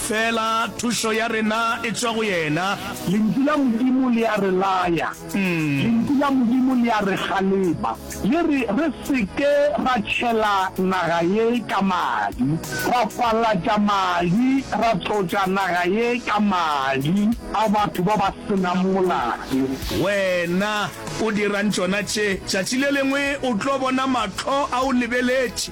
Feela thušo ya rena e tšwa go yena. Lentšu la Modimo le a re laya. Lentšu la Modimo le a re kgalema. Le re re se ke ra tšhela naga ye ka madi, ra falatša madi, ra tlotša naga ye ka madi a batho ba ba se nang molato. Wena o dirang tšona tše? Tšatši le lengwe o tlo bona mahlo a o lebeletše.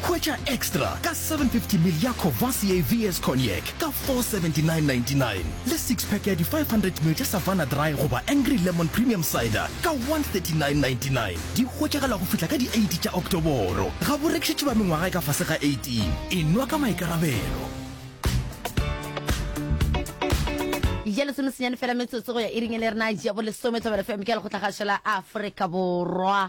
Hwetša Extra ka 750ml ya Courvoisier VS Cognac ka 479.99 le six-pack ya di 500ml tša Savanna Dry goba Angry Lemon Premium Cider ka 139.99. Di hwetšagala go fihla ka di 8 tša Oktoboro. Ga bo rekišetšwe ba mengwaga e ka fase ga 18. E nwa ka maikarabelo. Iri ya lesomesenyane fela metsotso go ya iring e le rena ya bolesome, Thobela FM ke ya Lekgotlakgašo la Afrika Borwa.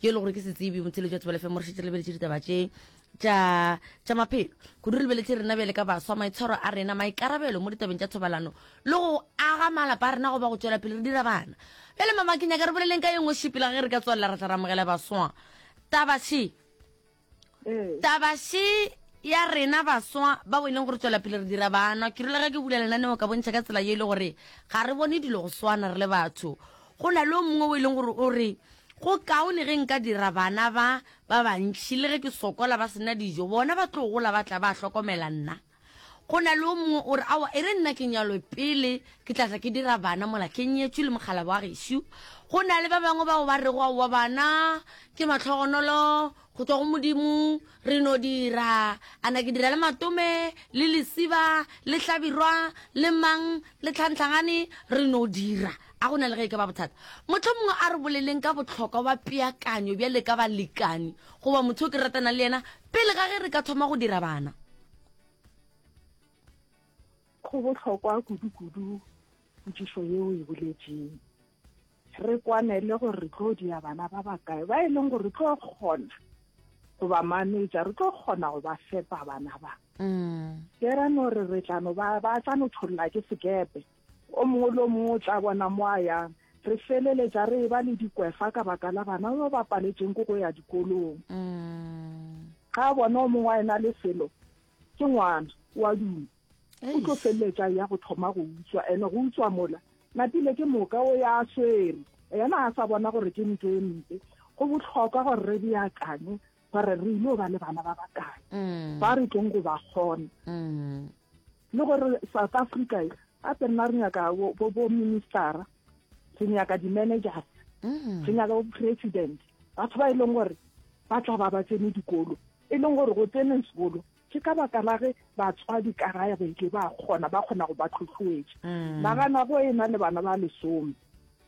yo e le gore ke setsebi motshelo jwa tsebelefe mo re šetse re lebeletše ditaba tše tša maphelo kudu re lebeletše rena bjale ka baswa maitshwaro a rena maikarabelo mo ditabeng tša thobalano le go aga malapa a rena go ba go tswela pele re dira bana bjale mamakenyaka re boleleng ka ye nngwe šipela ge re ka tswalela ra tla ramogela baswa tabaše ee. taba she ya rena baswa bao e leng gore tswela pele re dira bana ke rulege ke bula lenaneo ka bontšha ka tsela ye e le gore ga re bone dilo go swana re le batho go na le o mongwe o e leng gore o re go kaone ge nka dira bana ba ba bantšhi le ge ke sokola ba sena dijo bona ba tlo gola ba tla ba hlokomela nna Go na le yo mongwe o re, Aowa, e re nna ke nyalwe pele ke tla tla ke dira bana mola ke nyetšwe le mokgalabje wa gešo. Go na le ba bangwe bao ba rego, Aowa, bana ke mahlogonolo go tšwa go Modimo, re no dira, a na ke dira le matome le lesiba le hlabirwa le mang le tlhantlhagane, re no dira. A go na le ge e ka ba bothata? Mohlomongwe a re boleleng ka bohlokwa bja peakanyo bjale ka balekani goba motho yo ke ratanang le yena Pele ga ge re ka thoma go dira bana, go bohlokwa kudu-kudu potšišo yeo e boletšeng re kwanele gore re tlo dia bana ba bakae ba e leng gore re tlo kgona go ba manetša re tlo kgona go ba fepa bana ba ke ra no re re tlano ba ba tla no tholola ke sekepe O mongwe le o mongwe o tla bona mo a yang. Re feleletša re eba le dikwefa ka baka la bana ba ba paletšeng ke go ya dikolong. Ga a bona o mongwe a ena le selo, ke ngwana, o a duma. O tlo feleletša a ya go thoma go utswa, ene go utswa mola. Napile ke moka o ya a swere, yena a sa bona gore ke ntho e mpe. Go bohlokwa gore re beakanye ba re re ile ba le bana ba bakae mm. ba re tlong go ba kgona mm. le gore south africa e a tse nna re nyaka bo ministera re nyaka di-managers mm. re nyaka bo president batho ba e leng gore ba tla ba ba tsene dikolo e leng gore go tsene sekolo ke ka baka la ge batswadi ka raya ba ile ba kgona ba kgona go ba tlhotlhoetša nagana go e na le bana ba lesome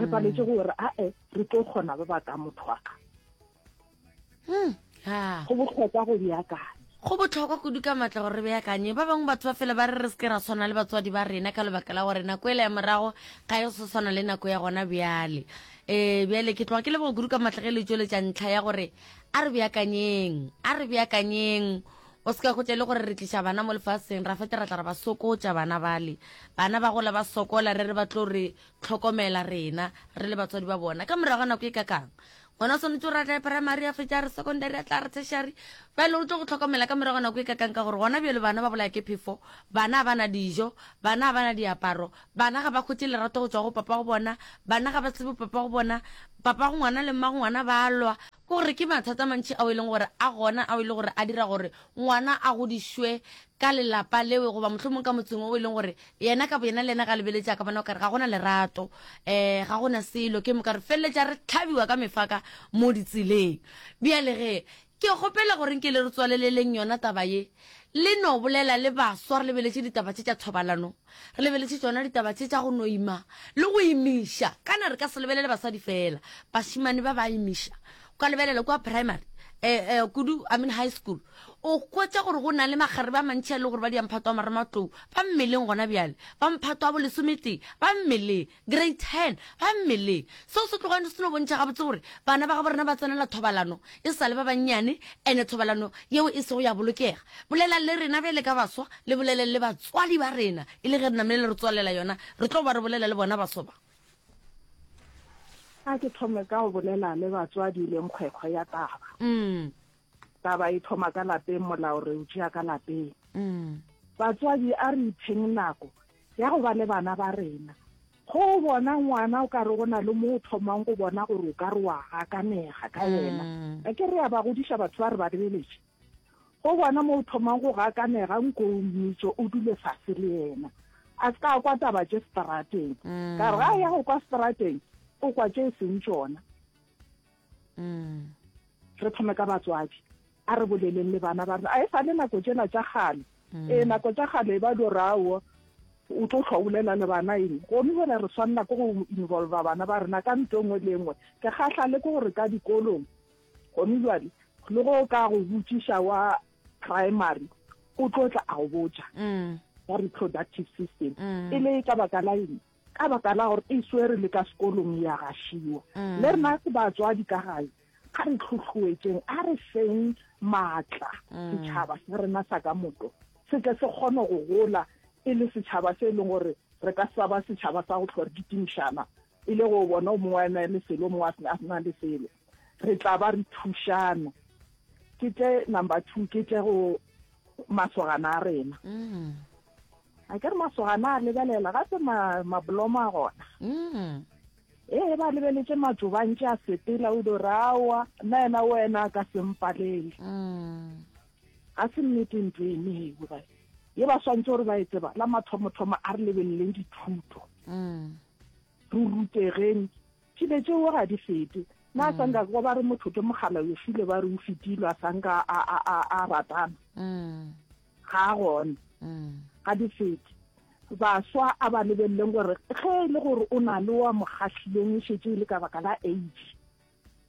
re paletse mm. gore ae re tlo kgona ba baka motho wa ka mm, go botlhokwa go beakanya go botlhokwa kudu ka maatla gore re beakanye ba bangwe batho ba fele ba re re seke ra tshwana le batswadi ba rena ka lebaka la gore nako ele ya morago ga e se tshwana le nako ya gona bjale um bjale ke tloga ke lebogo kudu ka maatla ge le tsweletša ntlha ya gore a re beakanyeng a re beakanyeng O se ka go tle le gore re tliša bana mo lefaseng, ra fete ra tla ra ba sokotša bana bale. Bana ba gola ba sokola, re re ba tlo re tlhokomela rena, re le batswadi ba bona. Ka morago ga nako e ka kang? Ngwana o swanetše gore a tla primary, a fetša re secondary, a tla re tertiary. Bjale o tlo go tlhokomela ka morago ga nako e ka kang ka gore gona bjalo bana ba bolaya ke phefo, bana ba na dijo, bana ba na diaparo, bana ga ba khwetše lerato go tšwa go papa go bona, bana ga ba tsebe papa go bona, papa go ngwana le mma go ngwana ba lwa, Ke gore ke mathata a mantši ao e leng gore a gona ao e leng gore a dira gore ngwana a godišwe ka lelapa leo goba mohlomong ka motseng o e leng gore yena ka boyena le yena ga lebeletse a ka bona o kare ga gona lerato um ga gona selo ke moka re feleletša re tlhabiwa ka mefaka mo ditseleng bjale ge ke kgopela gore nke le re tswaleleleng yona taba ye le no bolela le baswa re lebeletše ditaba tše tša thobalano Re lebeletše tšona ditaba tše tša go no ima le go imiša. Kana re ka se lebelele basadi fela, bašemane ba ba imiša. O ka lebelela kua primary, eh, eh, kudu, I mean high school, o hwetša gore go na le makgarebe a mantši a e le gore ba diamphato a marematlou ba mmeleng gona bjale, ba mphato a bolesometee ba mmeleng. Grey Ten, ba mmeleng. Seo se tlogane se no bontšha gabotse gore bana ba gabo rena ba tsenela thobalano e sa le ba bannyane, ene thobalano yeo e sego ya bolokega. Bolelang le rena bjale ka baswa, le boleleng le batswadi ba rena, e le ge re namile le re tswalela yona, re tlo ba re bolela le bona baswa ba. A ke thome ka go bolela le batswadi le nkgwekgwe ya taba. Taba e thoma ka lapeng, molao re o tšea ka lapeng. Batswadi a re ipheng nako ya go ba le bana ba rena. Go o bona ngwana o ka re go na le mo o thomang go bona gore o ka re wa gakanega ka yena. A ke re ya ba godiša batho ba re ba lebeletše. Go bona mo o thomang go gakanega nko o mmitše o dule fase le yena. A se ka a kwa taba tše seterateng. Ka re ga a ya go kwa seterateng o kwa tše e seng tšona. re thome ka batswadi a re boleleng le bana ba rena a e sa le nako tsena tša gale ee nako tša gale e ba lo rawo o tlo tlhwa bolela le bana eng gomme gore re swanela ko go involva bana ba rena ka nto nngwe le nngwe ke gahlale ke gore ka dikolong gomme jale le go ka go botšiša wa primary o tlo tla a go botša wa reproductive system e le ka baka la eng ka baka la gore e swere le ka sekolong ya gašiwa mm. le rena ke batswadi ka gae a re tlhotlhoetseng a re feng maatla mm. setšhaba sa rena sa ka moto se tle se kgone go gola e le setšhaba se e leng gore re ka sa ba setšhaba sa go tlhore ditimišana e le go bona o mongwe a na le selo o mongwe a sena le selo Re tla ba re thušana. Ke tle number two, ke tle go masogana a rena. Mm. A ke re masogana a lebelela, ga se mabolomo a gona. Mm. Ee, ba lebeletse matsobantše a sepela o do rawa, nna yena wena a ka sempalele. Mm. Ga se nnete ntlo e mewe ba. Ye ba swantse gore ba e tseba, la mathomo-thomo a re lebeleleng dithuto. Mm. Re rutegeng Tšibe tšeo ga di fete. Na sa nka kwa ba re motho ke mogala yo file ba re o fetilo a sa nka a a a a ratana. Ga a gone. Ga di fete. Baswa a ba lebelleng gore ge e le gore o na le wa mo gahlileng e šetše e le ka baka la age.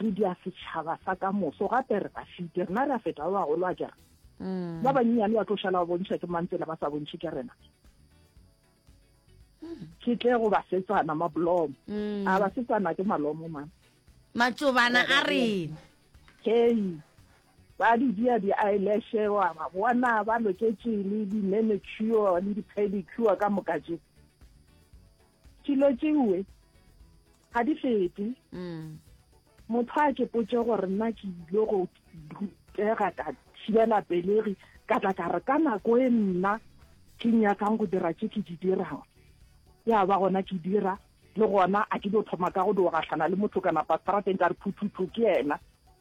Re dia setšhaba sa ka moso, gape re ba fite. Rena re a feta ba bagolo a kere. Ba banyenyane ba tlo šala ba bontšha ke mang tsela ba sa bontšhe ke rena. Ke tle go basetsana mablomo. A basetsana ke malomo man. Matšobana a rena. Hei, ba di dia di-eyelashe wa ba bona ba loketše le di-manicure le di-pedicure ka moka tše. dilo tšewe ga di fete mm. motho a ke potse gore nna ke ile go rutega ka thibela pelegi ka tla ka re ka nako e nna ke nyakang go dira tše ke di dirang ya ba gona ke dira le gona a ke dio thoma ka go diogahlana le motho kana pasarateng ka re phuthutu ke ena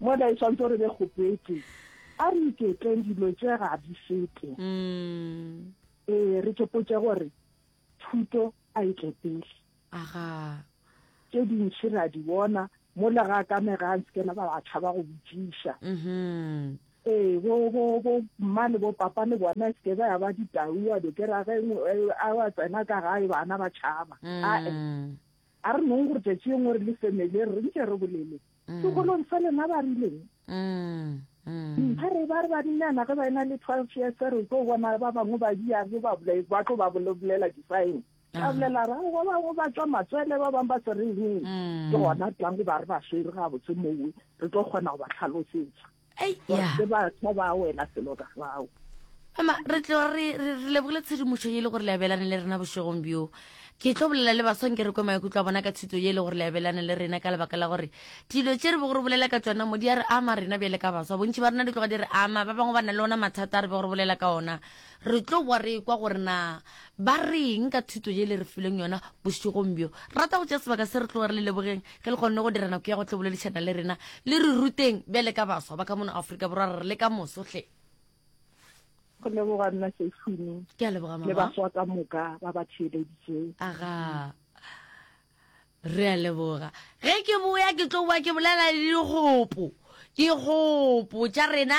Mola e swantse re be kgopetse. A re iketleng dilo tše ga di fete. Mm. Ee, re tsopotše gore thuto a e tle pele. Aga. Tše dintši ra di bona mola ga ka me ga ntse kena ba ba tshaba go botšiša. Mhm. Ee, bo bo bo mma le bo papa le bona e seke ba ya ba ditau a be ke ra ge a wa tsena ka gae bana ba tšhaba. Mm. A e. A re nong gore tšatši yengwe re le family re ntše re bolele mm. sekolong sa lena ba rileng mm, mm. ba re ba re badinyana ge ba ena le twelve years re tlo bona ba bangwe ba diabe ba tlo ba bolela di-sign ka bolela ra ba bangwe ba tswa matswele ba bangwe ba se re eng ke gona tlango ba re ba swere ga botse mowe re tlo kgona go ba tlhalosetsa se batho ba wela selo ka fao mama re tlo re lebogile tshedimošo ye e le gore le abelane le rena bošegong bjo ke tlo bolela le basong ke re kwe maikutlo a bona ka thuto ye e le gore le abelane le rena ka lebaka la gore dilo tše re bego re bolela ka tsona mo di a re ama rena bjale ka baswa bontši ba rena di tloga di re ama ba bangwe ba na le ona mathata a re bego re bolela ka ona Re tlo boa re ekwa gore na ba reng ka thuto ye le re fileng yona bošegong bjo. Rata go tšea sebaka se re tloga re le lebogeng ge le kgonne go dira nako ya go tlo boledišana le rena. Le re ruteng bjale ka baswa ba ka mono Afrika Borwa re le ka moso hle. Go leboga nna Seiphumi Ke a leboga mama. le baswa ka moka ba ba theeleditšeng. Aga. Re a leboga. Ge ke boya ke tlo boa ke bolela le dikgopo. Dikgopo tša rena.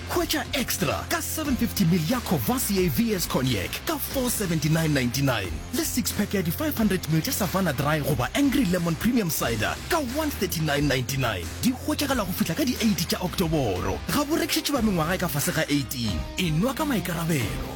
Hwetša Extra ka 750ml ya Courvoisier VS Cognac ka 479.99 le six-pack ya di 500ml tša Savanna Dry goba Angry Lemon Premium Cider ka 139.99. Di hwetšagala go fihla ka di 8 tša Oktoboro. Ga bo rekišetšwe ba mengwaga e ka fase ga 18. E nwa ka maikarabelo.